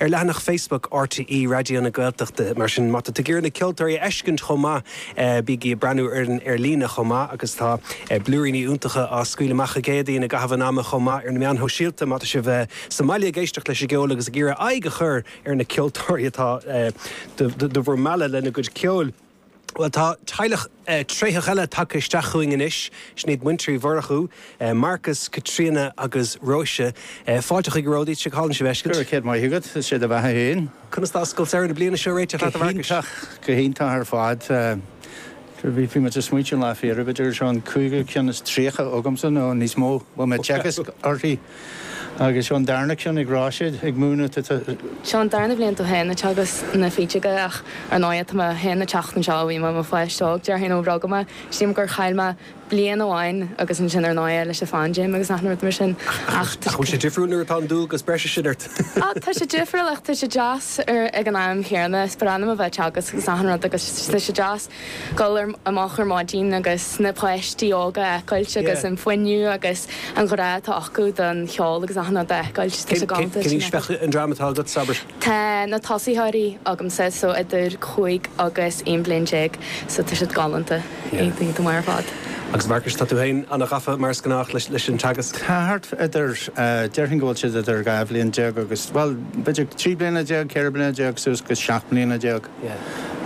ar leathanach Facebook RTÉ Raidió na Gaeltachta. Mar sin, má tá tú ag iarraidh na ceoltóirí a fheiscint chomh maith, bígí ag breathnú orainn ar líne chomh maith agus tá blúiríní iontacha á scaoileadh amach i gcónaí i gcaitheamh an ama chomh maith ar na meáin shóisialta má tá sibh sa mbaile ag éisteacht leis an gceol agus ag iarraidh aghaidh a chur ar na ceoltóirí atá do bhur mealladh lena gcuid ceoil. Bhuel, tá teaghlach tréitheach eile tagtha isteach chugainn anois. Sin iad muintir Uí Mhurchú, Marcus, Caitríona agus Róise. Fáilte, a chairde, go hálainn sibh a fheiscint. Go raibh céad maith agat, is é do bheatha féin. Conas tá Scoil Samhraidh na bliana seo ag réiteach leat, a Mharcais? Go hiontach, go hiontach ar fad. Bhí muid ag smaointiú an lá faoi dheireadh, gurb é seo an cúigiú ceann is tríocha agamsa nó níos mó, a bheith ag teagasc uirthi. Agus seo an darna ceann ag Róise, ag múineadh, tá. Seo an darna bhliain domh féin ag teagasc na fidle aige ach ar ndóighe tá mé féin ag teacht anseo ó bhí mé i mo pháiste óg, déarfainn ó rugadh mé. Sílim gur chaill mé bliain amháin agus ansin ar ndóighe leis an phaindéim agus achan rud mar sin ach tá sé difriúil nuair atá an dualgas breise sin ort. Á tá sé difriúil ach tá sé deas ag an am chéanna is bhreá liom a bheith ag teagasc agus achan rud agus tá sé deas. dul amach ar maidin agus na páistí óga a fheiceáilt agus an fuinneamh agus an grá atá acu don cheol agus achan rud a fheiceáilt. Tá sé galánta. Cén aois bheadh an dream atá agat, abair? Tá na tosaitheoirí agamsa so idir cúig agus aon bhliain déag so tá siad galánta, iontach ar fad. Agus a Mharcais, tá tú féin ana ghafa mar is gnách leis an teagasc? Tá thart idir, déarfainn go bhfuil siad idir dhá bhliain déag agus, bhuel, b'fhéidir trí bliana déag, ceithre bliana déag suas go seacht mbliana déag.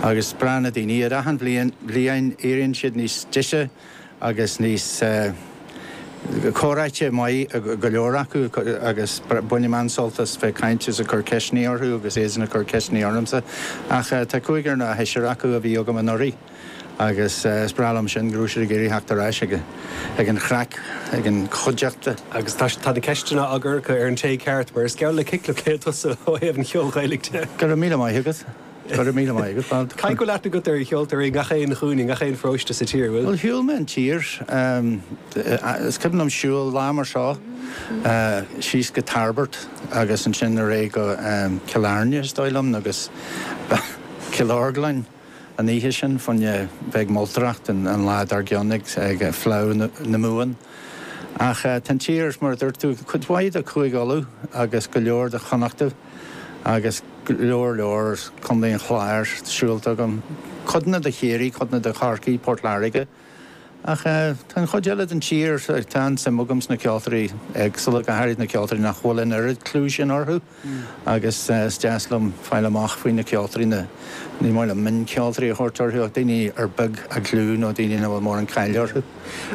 agus breáthacht daoine. Ar achan bhliain, bliain éiríonn siad níos deise agus níos eh. comhráití maith go leor acu agus bainim an-sult as bheith ag caint is ag cur ceisteannaí orthu agus iadsan ag cur ceisteannaí ormsa. Ach tá cúigear nó seisear acu a bhí agam anuraidh. Agus is breá liom sin, go raibh siad ag iarraidh theacht ar ais ag an chraic, ag an chuideachta. Agus tá na ceisteanna á gcur acu ar an té ceart, mar is geall le ciclipéid tusa ó thaobh an cheoil Ghaelaigh de. Go raibh míle maith agat. Go raibh míle maith agat. Caithfidh go bhfuil aithne agat ar cheoltóirí i ngach aon chúinne, i ngach aon pharóiste sa tír, an bhfuil? Bhuel, shiúil mé an tír. Is cuimhin liom siúl lá mar seo síos go Tairbeart agus ansin ar aghaidh go Cill Airne, is dóigh liom, nó go Cill Orglain. an oíche sin fá choinne bheith ag moltóireacht an lá dár gcionn ag Fleá na Mumhan. Ach tá an tír, mar a dúirt tú, cuid mhaith de Chúige Uladh agus go leor de Chonnachta agus go leor leor de Chondae an Chláir siúlta agam, codanna de Chiarraí, codanna de Chorcaigh, Port Láirge. Ach tá an chuid eile den tír, tá an-suim agam sna ceoltóirí éagsúla, go háirid na ceoltóirí nach bhfuil an oiread clú sin orthu agus is deas liom fáil amach faoi na ceoltóirí, na, ní maith liom mioncheoltóirí a thabhairt orthu ach daoine ar beag a gclú nó daoine nach bhfuil mórán cáile orthu.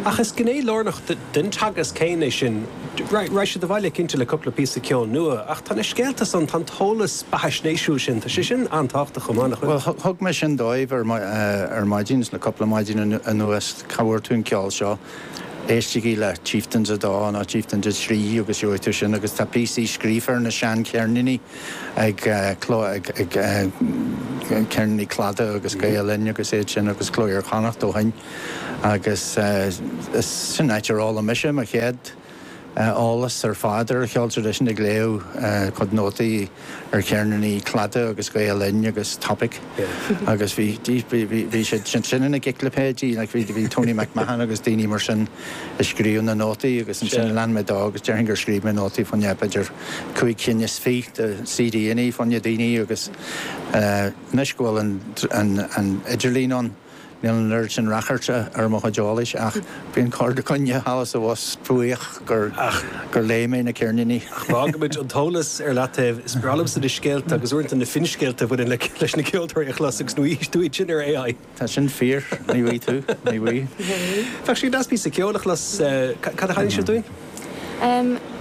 Ach is gné lárnach den teagasc féin é sin. Rachaidh siad abhaile cinnte le cupla píosa ceoil nua. Ach tá na scéalta san, tá an t-eolas beathaisnéisiúil sin, tá sé sin an-tábhachtach chomh maith, nach bhfuil? Bhuel, thug mé sin dóibh ar maidin, is le cupla maidin anuas, cá bhfuair tú an ceol seo? Éistigí le Chieftains 2 nó Chieftains 3 agus gheobhaidh tú sin agus tá píosaí scríofa ar na seancheirníní ag Ceirníní Cladaigh agus Gael-Linn agus iad sin agus Cló Iar-Chonnacht ó shoin. Agus sin áit ar fhoghlaim mise mo chéad eolas ar fad ar an cheol traidisiúnta, ag léamh a gcuid nótaí ar cheirníní Cladaigh agus Gael Linn agus Topic. Agus bhí siad sin ina gciclipéidí, bhí Tony MacMahon agus daoine mar sin ag scríobh na nótaí agus ansin lean mé dó agus déarfainn gur scríobh mé nótaí fá choinne b'fhéidir cúig cinn is fiche de CDannaí fá choinne daoine agus anois go bhfuil an idirlíon ann, Níl an oiread sin ráchairt ar mo chuid eolais ach bíonn corrdhuine thall is abhus, buíoch gur léigh mé na ceirníní. Ach fágfaimid an t-eolas ar leataobh. Is breá liomsa na scéalta agus uaireanta na finscéalta a bhaineann leis na ceoltóirí a chlos agus ní bhfaighidh tú iad sin ar AI. Tá sin fíor, ní bhfaighidh tú, ní bhfaighidh. Bheadh sé deas píosa ceoil a chlos. Cad a sheinnfidh sibh dúinn?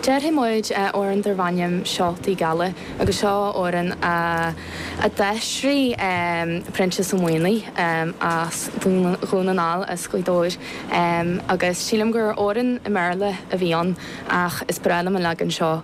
Déarfaidh muid amhrán darb ainm Seoltaí Geala agus seo amhrán a d'aistrigh Proinsias Ó Maonaigh as Dhún na nGall as Gaoth Dobhair agus sílim gur amhrán i mBéarla a bhí ann ach is breá liom an leagan seo